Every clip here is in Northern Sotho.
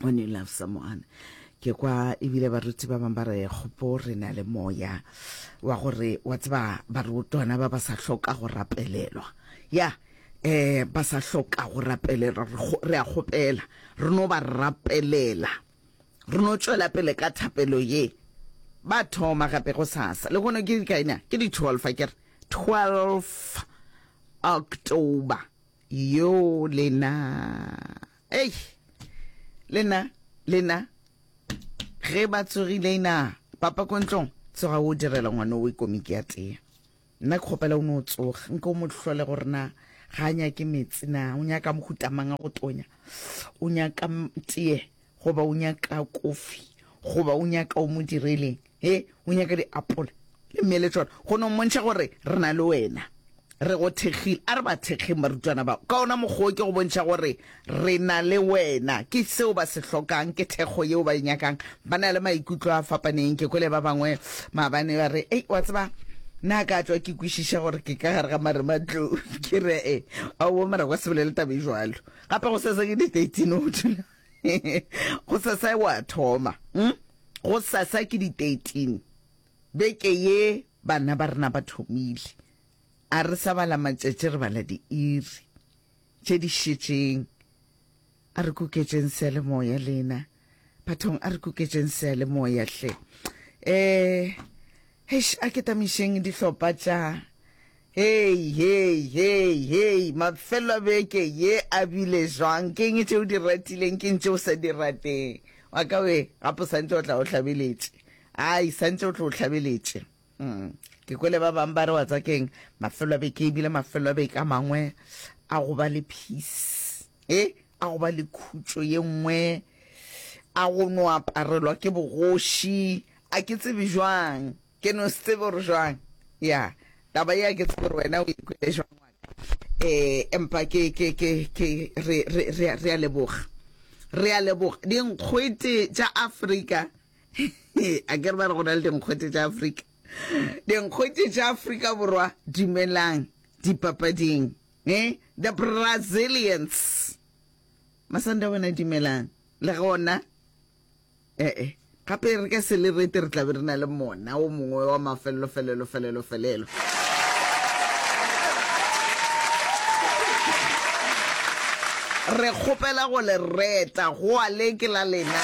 when you love someone ke kwa ebile baruti ba bangwe ba re gopo re na le moya wa gore wa tseba barutwana ba ba sa hloka go rapelelwa ya eh ba sa hloka go rapelelwa re a gopela re no ba rapelela re no tšwela pele ka thapelo ye ba thoma gape go sasa le gone ke kaina ke di 12 ke re 12 october yo lena Ei, lena, lena, ge ba tsogile ina papa ko ntlong tsoga o direla ngwana o ikomiki ya tea nna ke kgopela o ne o tsoga nke o mo tlhole gore na ga a nyake metsi na o nyaka mohutamang a go tonya o nyaka tee goba o nyaka kofi goba o nyaka o mo direleng He, o nyaka diapola le mele tšona, go no mmontšha gore re na le wena. Re go thekgile. A re ba thekgeng barutwana bao. Ka ona mokgwa ke go bontšha gore re na le wena. Ke seo ba se hlokang, ke thekgo yeo ba e nyakang. Ba na le maikutlo a fapaneng. Ke kwele ba bangwe maabane ba re, Ei, wa tseba, na ka tšwa ke kwešiša gore ke ka gare ga marematlou. Ke re, E, aowa, mara kwa se bolele taba e jwalo. Gape go sesa ke di-thirteen o thula. go sasa wa thoma hm? go sasa ke di 13 beke ye bana ba rena ba thomile a re sa bala matšatši re bala diiri tše di šetšeng a re kuketseng sele moya lena bathong a re kuketseng sele moya hle um a ke tamišeng dihlopha tša Hei, hei, hei, hei, mafello a beke ye a bile jwang? Ke eng tše o di ratileng, ke eng tše o sa di rateng? Wa ka we, gape o santse o tla o hlabeletše. Ai, santse o tlo o hlabeletše. Mm. Ke kwele ba bang ba re wa tsa keng, mafello a beke e bile mafello a beke a mangwe a go ba le peace. E, a go ba le khutšo ye nngwe, a go no aparelwa ke bogoši, a ke tsebe jwang. Ke no se tsebe gore jwang. Ya, taba ya ke tsebe gore wena o e kwele jwang wa ka. Eh, empa ke, ke, ke, ke, re, re, re, re a leboga. Re a leboga. Dinkgwete tša Afrika. a ke re ba re go na le dinkgwete tša Afrika. Dinkgwete tša Afrika Borwa, dumelang dipapading. Eh, the Brazilians. Masanda wena dumelang. Le gona, E-e, gape re ka se le rete re tlabe re na le mona o mongwe wa mafelelo felelo felelo felelo. Re kgopela go le reta, go a le ke la lena.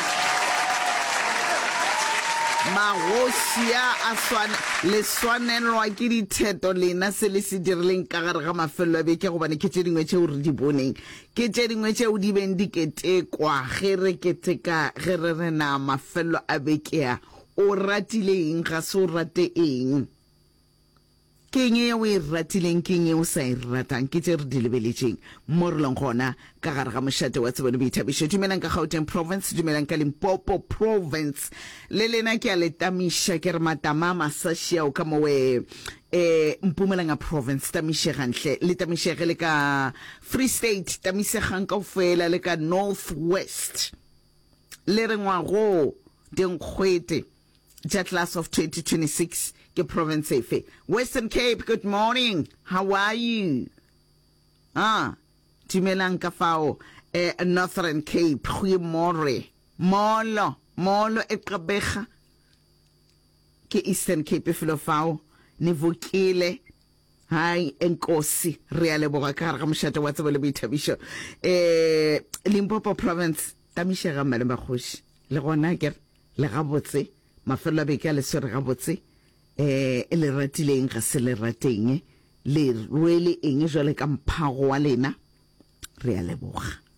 Magoši a a swane le swanelwa ke ditheto lena se le se dirileng ka gare ga mafelelo a beke gobane ke tše dingwe tšeo re di boneng Ke tše dingwe tšeo di beng di ketekwa ge re keteka ge re re na mafelelo a bekea o ratile eng, ga se o rate eng. Ke eng ye o e ratileng, ke eng ye o sa e ratang, ke tše re di lebeletšeng mo re leng gona ka gare ga mošate wa tsebo le boithabišo. Dumelang ka Gauteng Province, dumelang ka Limpopo Province. Le lena ke a le tamiša ke re matama a masaši ao ka mowe e Mpumalanga Province, Tamišegang hle, le Tamišege, le ka Free State, Tamisegang kaufela, le ka North West, le re ngwagoo dinkgwete tša class of 2026 ke province efe? Western Cape, good morning, how are you? Ah, dumelang ka fao eh, Northern Cape, goeiemorre, molo, molo e qabega. Ke Eastern Cape felo fao. Nevokile. Hai, Enkosi. Re a leboga ka gare ga mošate wa tsebo le boithabišo. E, Limpopo Province. Tamišega mme le makgoši. Le gona ke re, le gabotse. Mafelelo a beke a le swere gabotse. E, e le ratile eng ga se le rateng. Le rwele eng jwale ka mphago wa lena. re a leboga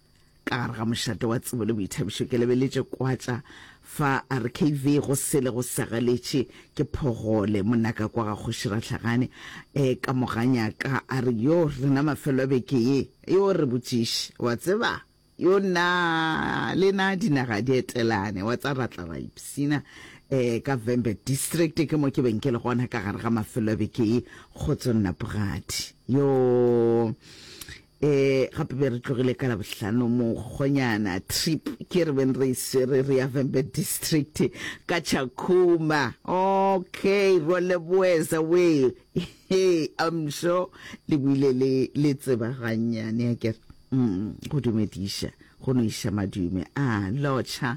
ka gare ga mošate wa tsebo le boithabišo ke lebeletše kwatša fa rkv go sele go segaletše ke phogole monaka kwa ga kgoši ratlhagane e eh, ka moganya ka a re yo rena mafelo a beke ye yo re botšiše wa tseba yo na le na dinaga di etelane wa tsa ratla ra ipsina um eh, ka vembe district ke mo ke beng ke le gona ka gare ga mafelo a beke ye kgotso nnapogadi yo eh gape be re tlogile ka labohlano mokgonyana trip ke re beng re isere re ya vembe district ka chakuma okay role boeza we hey i'm sure le buile le le tseba gannyane ya kere mm go dumediša go no iša madume a ah, locha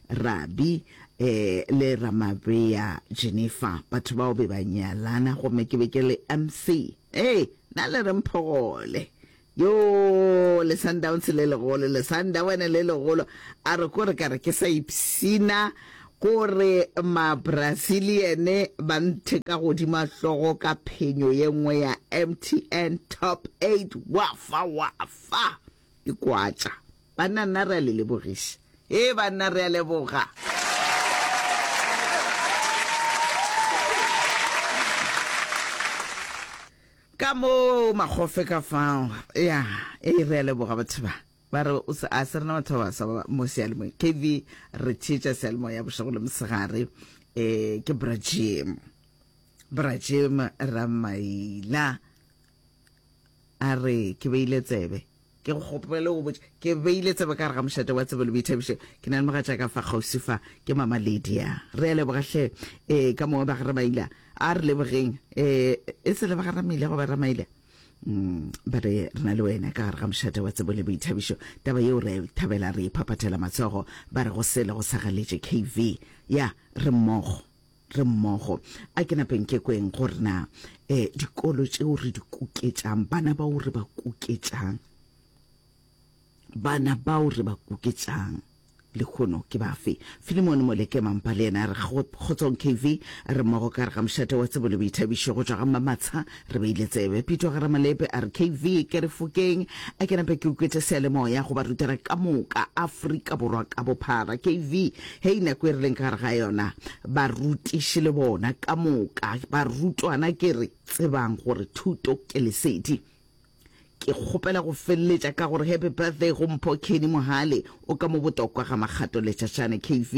Rabi e le Ramabea Jennifer. Batho bao be ba nyalana gomme ke be ke le MC. Ee, na le re mphogole. Yoo, le Sundowns le legolo, le Sundowene le legolo. A re ko re ka re ke sa ipsina gore ma-Brazilian ba nthe ka godima hlogo ka phenyo ye nngwe ya MTN Top 8. Wa fa, wa fa! Dikwatša. Banna nna re a le lebogiša. Hee banna re a leboga. Ka mo magofe ka fao. Ya, ee re a leboga batho ba. Ba re o se a se rena batho ba baswa ba mo sealemoya. KV re theetša sealemoya bošego le mosegare. Eh ke Brajim. Brajim Ramaila. a re ke beile tsebe ke go kgopele go botša ke beile tsebe ka re ga mošate wa tsebe le boithabišo ke na le mogatša ka fa kgauswi fa ke mama ledia re a lebogatlhe um eh, ka mongwe ba ga ramaila a re lebogeng um e se le ba ga ramaile go ba ramaile um mm, ba re re na le wena ka gare ga mošate wa tsebo le boithabišo taba yeo re a thabela re iphaphathela matsogo ba re go sele go sagaletše kv ya re mmogo re mmogo. A ke napeng ke kweng gore na um dikolo tšeo re di kuketšang, bana bao re ba kuketšang, bana bao re ba kuketšang lehono ke bafe filimone moleke mampa le yena re kgotsong kv re mmogo ka re ga mošate wa tsebo le boithabišo go tšwa ga mmamatsha Re beile tsebe, Pito ga Ramalepe a re KV ke re fokeng, a ke nape ke ukwetše seyalemoya go barutwana ka moka, Afrika Borwa ka bophara. KV, Hei nako e re leng ka gare ga yona, barutiši le bona ka moka, barutwana ke re tsebang gore thuto ke lesedi. Ke kgopela go feleletša ka gore happy birthday go Mpho Kenny Mohale o ka mo botokwa ga Makgato Letšatšane KV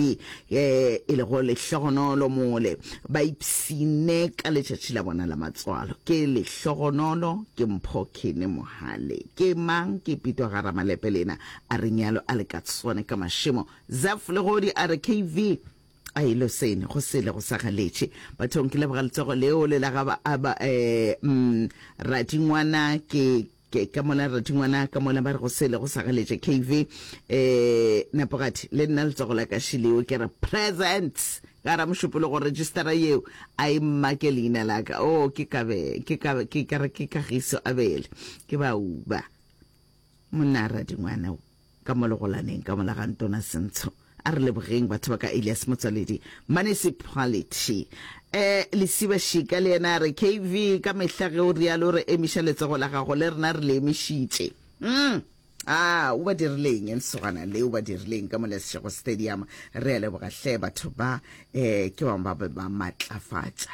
e e lego lehlogonolo mole ba ipsine ka letšatši la bona la matswalo. Ke lehlogonolo ke Mpho Kenny Mohale. Ke mang? Ke Pitwa ga Ramalepe lena a re nyalo a le ka tsone ka mašemo. Zeph Legodi a re KV A e lo sene, go sele go sa galetše bathong. Ke leboga letsogo leo le la ga ba, a ba, eh, mm, Radingwana, ke, ke, ka mola Radingwana, ka mola ba re go sele go sa galetše KV, eh, Nepogati, le nna letsogo la ka Shileo, ke re present ka ra mošupolo go registera yeo, a e mmake leina la ka. Oh, ke ka be, ke ka, ke ka re ke Kagiso Abele, ke ba uba. Monna Radingwana o. Ka mo legolaneng ka mola ga Ntona Sentsho. A re lebogeng batho ba ka Elias Motswaledi, Municipality. Eh, Lesiba Shika le yena a re, KV, ka mehla ge o realo re emiša letsogo la gago, le rena re le emišitše. Umm. Aa, o ba dirileng lesogana le, o ba dirileng ka mo Lesego Stadium. Re a leboga hle batho ba, eh, ke bang ba be ba matlafatša.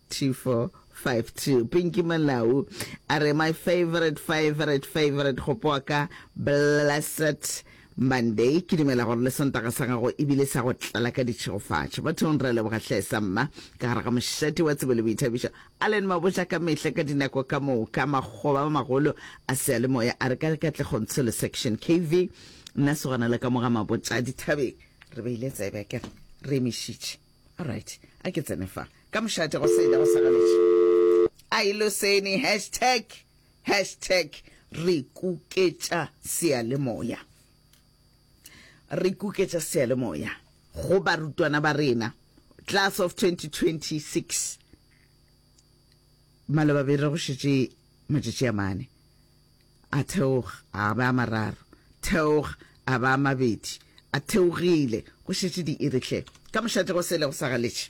2452 Pinky Malau a re my favorite favorite favorite gopoa ka blessed Monday ke dumela gore le sontaga sa gago ebile sa go tlala ka ditšhegofatšo bathong re leboga hle sa mma ka gare ga mošate wa tsebo le boithabišo Allen Maboja ka mehla ka dinako ka moka makgoba ba magolo a sealemoya a re ka katlegong tshelo section KV nna segwana le ka moga mabotša dithabeng re beile tsebe ke re re emišitše Alright, a ke tsene fa. Ka mošate go sele go sagaletše. A e loseni hashtag hashtag re kuketša seyalemoya. Re kuketša seyalemoya go barutwana ba rena class of 2026. Maloba be re go šetše matšatši a mane. A theoga, a ba a mararo. Theoga, a ba a mabedi. A theogile, go šetše diiri hle. Ka mošate go sele go sa galetše.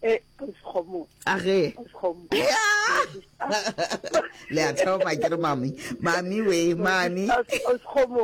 E, Kgoši Kgomo. A ge. Kgoši Kgomo. Le a thoma ke re mami. Mami we, mami. Kgoši Kgomo.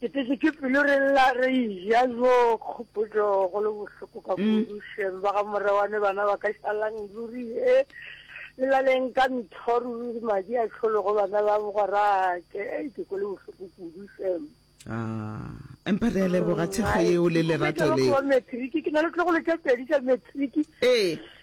Ke tletše ke pelo re lla re eja yo kgopotšo go le bohloko ka kudu šem ba ga morewane bana ba ka šalang ruri he le laleng ka ntho ruri madi a tšhologo bana ba bogorake ei ke ko le bohloko kudu šem Ah, empa re a leboga thekgo yeo le lerato leo. Matric ke na le tlogolo tša pedi tša matric. Ee.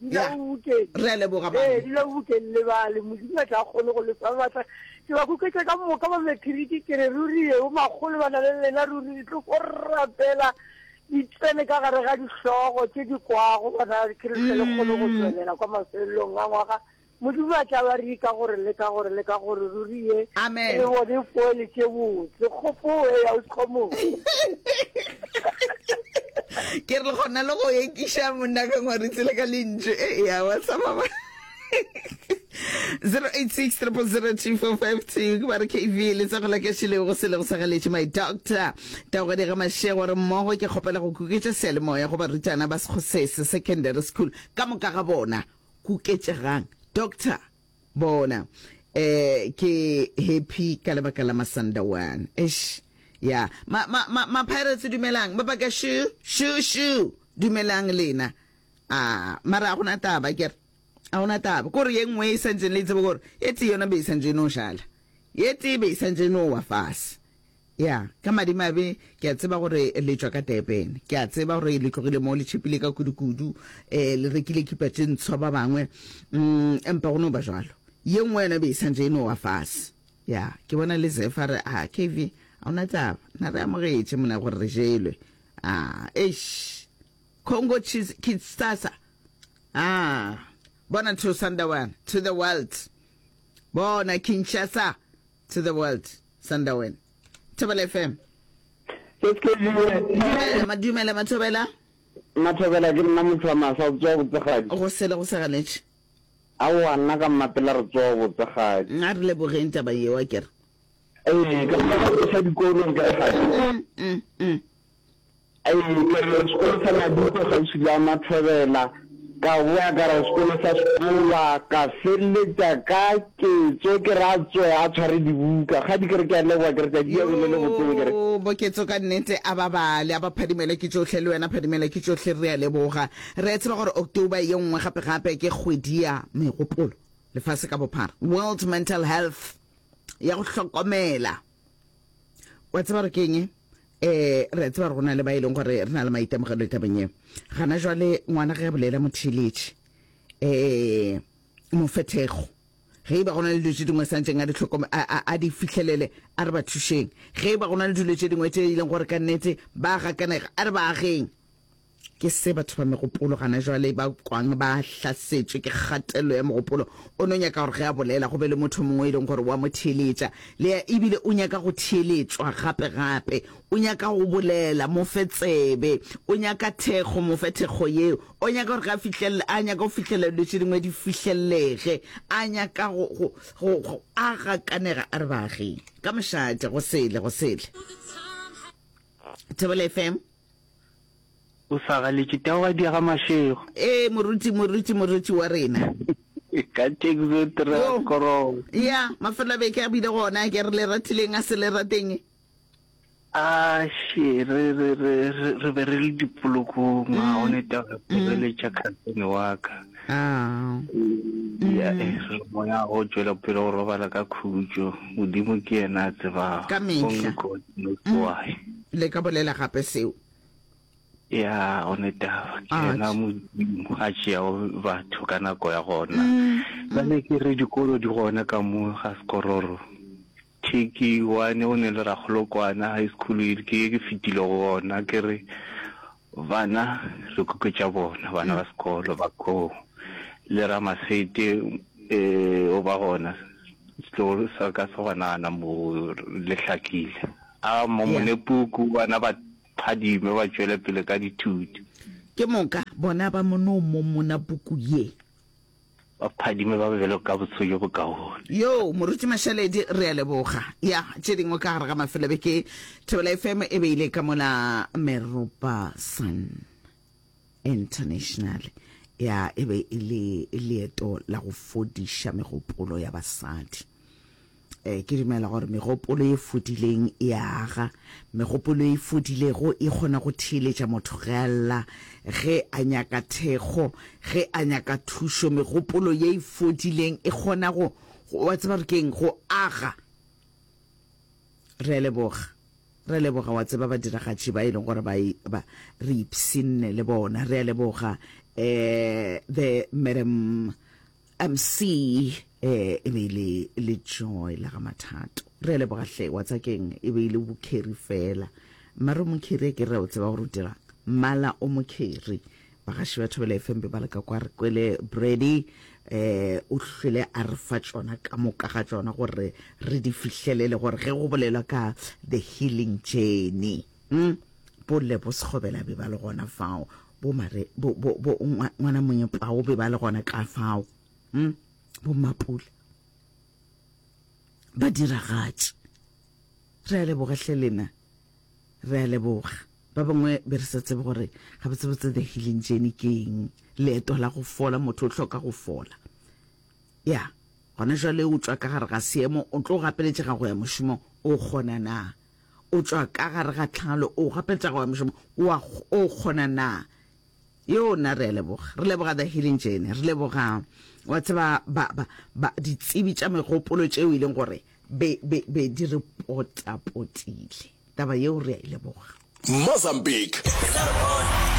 dula o bukeng re a leboga ee mane dula o bukeng le bale modimo a tla kgone go lefa batla ke ba kuketša ka moka ba mekhiriki ke re ruri yeo magolo ba na le lena ruri di tlo go rapela di tsene ka gare ga dihlogo tse di kwago bona ke re tlhele kgone go tswelela kwa mafelelong a ngwaga Modimo a tla ba ri ka gore le ka gore le ka gore ruri ye Amen. re bone poele tše botse kgopoe ya o sekgomoe. Ke re gona le go ekiša monna ka ngwaritse le ka lentšu e ya wa sa baba 086 002452 ke ba re kv le tsa go la ka šilego go selego sa galetše my doctor tagwedi ga mašego re mmogo ke kgopela go kuketša seyalemoya go barutwana ba sekgosese secondary school ka moka ga bona Kuketšegang doctor bona eh ke happy ka lebaka la masanda one eish ya ma ma ma, ma pirates dumelang ba baka shu shu shu dumelang lena a mara a gona taba ke re a gona taba ko re ye nngwe e santse le tsebe gore e tee yona be e santse e no jala ye tee be e santse e no wa fase Ya, ka madimabe, ke a tseba gore le tšwa ka Durban. Ke a tseba gore le tlogile mo le tšhepile ka kudu-kudu, e, le rekile kipa tše ntshwa ba bangwe. Mm, empa go no ba bjalo. Ye nngwe yona be e santše e no wa fase. Ya, ke bona le Zeph a re, A, Kevy, ga o na taba. Na re amogetše, mona, gore re jelwe. A, eish! Congo Chiefs, Kidsasa! A, bona Thusanda wana, to the world! Bona Kinshasa! To the world, Sandawen. Thobela FM. Ke Skejiwe. Dumela, ma, dumela, Mathobela. Mathobela, ke nna motho wa masa, o tsoa botsegadi. Go sele go sa ganetše. Aowa, nna ka mmapela re tsoa botsegadi. Nga re lebogeng taba yeo, a kere. Ee, ka mmapela re sa dikolong ka gadi. Mm, mm, mm. A etela sekolo sa Mabupo kgauswi le Amathobela, ka boya ka re sekolo sa Sekolwa, ka feleletša ka Ketso ke re a tsoe a tshware dibuka. Kgadi ke re ke a leboga, ke re tšatši ya bele le botseng, ke re. Yoo, Boketso ka nnete a babale, a ba Phadimela ke tšohle, le wena Phadimela ke tšohle, re a leboga. Re a tseba gore October ye nngwe gape-gape ke kgwedi ya megopolo lefase ka bophara, World Mental Health, ya go hlokomela. wa tseba re keng um eh, re a tseba re gona le ba e leng gore re na le maitemogelo tabeng eo gana jwale ngwana ge a bolela motheeletše um eh, mofethego ge e ba gona le dilo tse dingwe santseng a di tlhokome a di fitlhelele a re ba thušeng ge e ba gona le dilo tse dingwe tse e leng gore ka nnete ba gakanega a re ba ageng Ke se batho ba megopolo gana jwale ba kwang ba hlasetšwe ke kgatelelo ya mogopolo. O no nyaka gore ge a bolela go be le motho mongwe e leng gore wa mo theeletša. Lea, Ebile o nyaka go theeletšwa gape-gape. O nyaka go bolela, mo fe tsebe. O nyaka thekgo, mo fe thekgo yeo. O nyaka gore ge a fihlelele, a nyaka go fihlelela dilo tše dingwe di fihlellege. A nyaka go, go, go, go, a gakanega a re baaging. Ka mošate, go sele, go sele. Thobela FM. O sa galetše tao ga diega mašego. Ee, moruti, moruti, moruti wa rena. Ka tekzo tra Yo. korong. Ya, mafelo a beke a bile gona, ke re le ratileng a se le rateng. A še, re, re, re, re, re be re le dipolokong, a go ne tao re poreletša khansene wa ka. Ah. Ya, eh, re le moya go tšwela pele go robala ka khutšo. Modimo ke yena a tsebago. Ka mehla. Only God knows why. Le ka bolela gape seo. Ya, go ne taba. Ke yena Modimo a tšeago batho ka nako ya gona. Bjale ke re dikolo di gona ka mo ga Sekororo. Thiki, wane go ne le Rakgolokwana High School, ke ye ke fetile go gona. Ke re Bana re kuketša bona, bana ba sekolo, bakgoo le Ramasete eh, o ba gona setlogo sa ka sa banana mo le hlakile. A mo Yeah. mone puku, bana ba phadime ba tšwele pele ka dithuto. Ke moka bona ba mono mo mona puku ye. Ba phadime ba be bjalo ka botsho bjo bokaone. Yoo, Moruti Mashaledi, re a leboga. Ya, tše dingwe ka gare ga mafelobeke, Thobela FM e be e le ka mola Meropa Sun International. Ya, e be e le leeto la go fodiša megopolo ya basadi. Ee, ke dumela gore megopolo e fodileng e a aga. Megopolo e fodilego e kgona go theeletša motho ge a lla, ge a nyaka thekgo, ge a nyaka thušo. Megopolo ye e fodileng e kgona go, wa tseba gore keng, go aga. Re a leboga. Re a leboga wa tseba badiragatši ba e leng gore ba e ba re ipsinne le bona. Re a leboga um the Madam MC, E be e le le Joy la ga Mathato. Re a leboga hle, wa tsa keng e be e le bokheri fela. Mmare o mokheri a ke re o tseba gore o dirang. Mmala o mokheri. Bagaši ba Thobela FM be ba le ka kwa re kwele Brady eh o hlwele a re fa tšona ka moka ga tšona gore re di fihlelele gore ge go bolelwa ka the healing journey. Hm? Bo Lebo Sekgobela be ba le gona fao. bo mare bo bo bo ngwana monye pao be ba le gona ka fao hm bo mapula ba diragatše re a leboga hle lena re a leboga ba bangwe be re sa tsebe gore ga ba tsebotse the healing journey ke eng leeto la go fola motho o hloka go fola ya gona jale o tswa ka gare ga seemo o tlo gapeletšega go ya mošomo o kgona na O tšwa ka gare ga tlhalo, o gape tša go ya mošomo, o a, o kgona na? Yoo, na re a leboga. Re leboga The Healing Journey. Re leboga, wa tseba, ba, ba, ba, ditsebi tša megopolo tšeo e leng gore be, be, be di re potapotile. Taba yeo re a e leboga. Mozambique,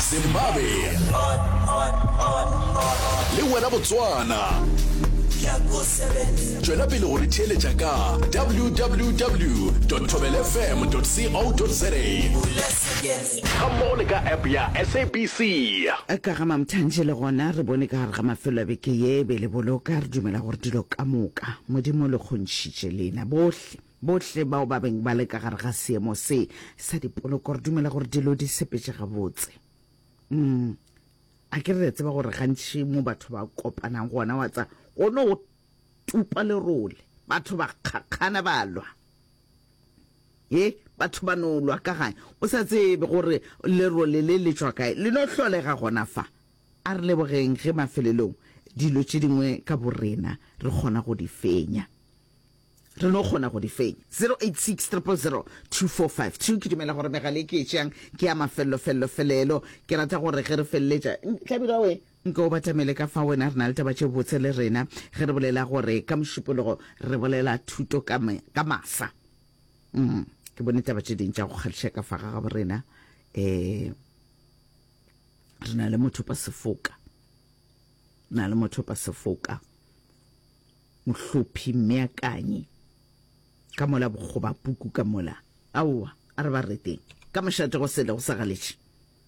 Zimbabwe, le wena Botswana. Tšwela pele go re theeletša ka www tobelfm co za ga mmogo le ka app ya sabc. Ka ga Mamthanje le gona re bone ka gare ga mafelo a beke ye, be le boloka, re dumela gore dilo ka moka Modimo o le kgontšhitše lena bohle, bohle bao ba beng ba le ka gare ga seemo se sa dipoloko, re dumela gore dilo di sepetše gabotse. Umm, a ke re le a tseba gore gantši mo batho ba kopanang gona wa tsa, go no tupa lerole, batho ba kgakgana ba lwa. Ye, batho ba no lwa ka gae, o sa tsebe gore lerole le le tšwa kae, le no hlolega gona fa. A re lebogeng ge mafelelong dilo tše dingwe ka borena re kgona go di fenya. Re no kgona go di fenya. 0860002452 Ke dumela gore megala e ke e tšeang ke ya mafello-fello-felelo. Ke rata gore ge re feleletša, Tlabirwa we, Nke o batamele ka fao wena re na le taba tše botse le rena ge re bolela gore ka mošupologo re bolela thuto ka, ka masa. Mm, ke bone taba tše ding tša go kgahliša ka fa gagabo rena. Eh, re na le motho pa sefoka. Re na le motho pa sefoka. Mohlophi meakanyi. Ka mola bokgoba puku ka mola. Aowa, a re ba reteng. Ka mošate go sele go sa galetše.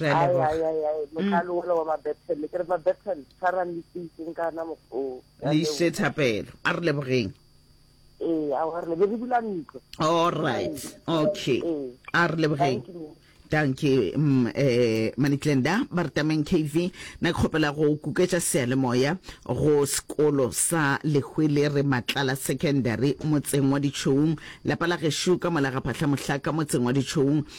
re a leboga ai ai ai mm. motlalo ola wa mabethele ke re mabethele tshwarang leteiseng ka ana mokgwa oo le ise thapelo a re lebogeng ee a re lebe re bula ntlo all right okay a re lebogeng danke um eh, manitlenda ba re tameng kv na ke kgopela go kuketša sealemoya go sekolo sa lehwele re matlala secondary motseng wa ditšhoung lapa la gešo ka mola ga phahla mohlaka motseng wa ditšhoung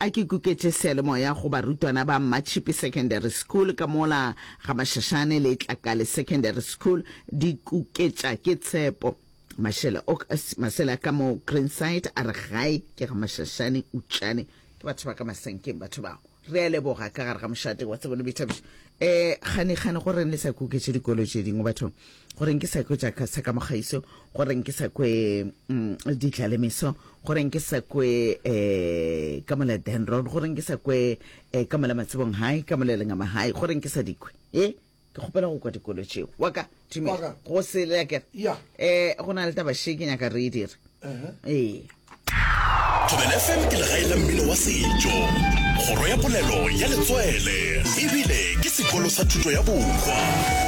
A ke kuketše seyalemoya go barutwana ba Mmatšhipi Secondary School ka mola ga Mashashane le Tlakale Secondary School di kuketša ke tshepo. Mashele ok masele a ka mo Greenside a re gae ke ga Mashashane utšane ke batho ba ka masenkeng batho bao. Re a leboga ka gare ga mošate wa tsebo le boithabišo. Eh kgane kgane go reng le sa kuketše dikolo tše dingwe bathong? gore nke sa kwe jaaka sa ka mogaiso gore nke sa kwe um mm, ditlalemeso gore nke sa kwe um ka mola denron gore nke sa kwe um ka mola matsebong hai ka mola lengama hai gore nke sa dikwe e ke kgopela go kwa dikolo tšeo waka tume go se leke um eh, go na le taba she ke nyaka re e dire ee thobela fm ke legae la mmino wa setšo kgoro ya polelo ya letswele ebile ke sekolo sa thuto ya bokwa